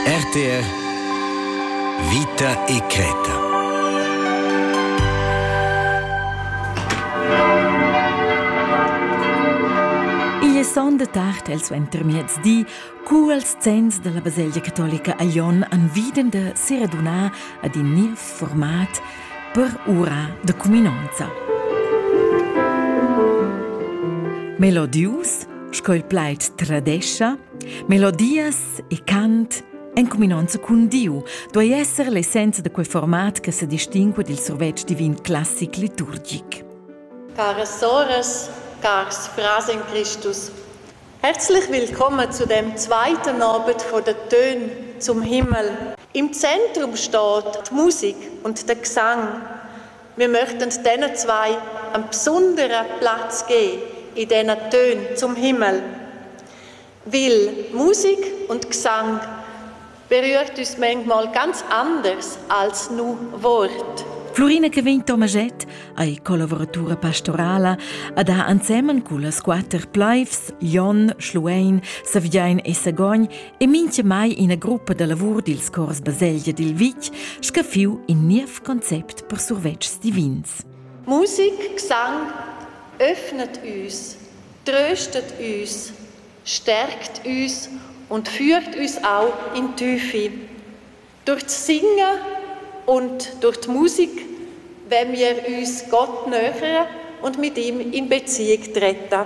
RTR Vita e creta Igl è son de tard el suentermiez di, cu els zenns della baselgia catolica a Lyon han viden de seradunar ad in niev format per ura de cuminonza. Melodius, sco il plaid tradescha, Melodias e cant en cuminonza cun Diu duei esser l'essenza da quei format che sedistingua dil survetsch divin classic liturgic. Caras soras, cars frars en Cristus, herzlich willkommen zu dem zweiten Abend von der Töne zum Himmel. Im Zentrum steht die Musik und der Gesang. Wir möchten diesen zwei einen besonderen Platz geben in diesen Tönen zum Himmel. Weil Musik und Gesang berührt uns manchmal ganz anders als nur Wort. Florina che vegn Tomaget ei collaboratura pastorala ad ha ensemen cullas quater plaivs Jon, Schluein, Saviain e Sagogn e minche mai ina gruppa da lavur dils cors Baselgia dil Vic scaffiu in niev concept per survetschs divins. Musik, Gesang öffnet uns Tröstet üs, stärkt üs und führt üs auch in Tüfi. Durch das Singen und durch die Musik wenn wir uns Gott nähern und mit ihm in Beziehung treten.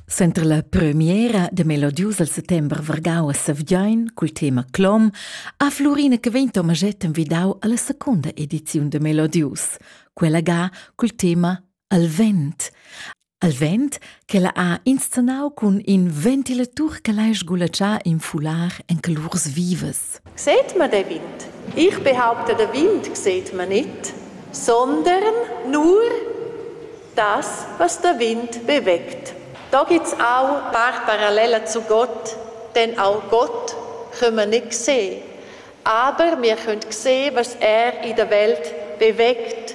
Center la premiera de melodius al settember vargau a Savgin cul tema Clom ha Flurina che vegn Tomaget envidau alla seconda ediziun de Melodius, quella ga cul tema al vent. Al vent ch'ella ha inscenau cun in ventilatur che lai sgulatschar in fular en colurs vivas. Seit man der Wind? Ich behaupte, der Wind sieht man nicht, sondern nur das, was der Wind bewegt. Da gibt's auch paar Parallelen zu Gott, denn auch Gott können wir nicht sehen. Aber wir können sehen, was er in der Welt bewegt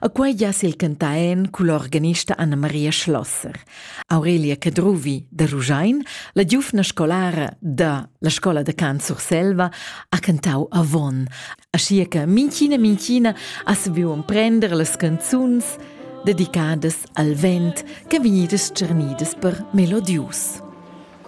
A quei jess il cantaen cul organista Anna Maria Schlosser. Aurelia Cadruvi da Ruschein, la giufna scolara da la scola da cant Surselva, ha cantau avon, aschia che minchina minchina as viu emprender las canzuns dedicadas al vent che vegnidas tschernidas per melodius.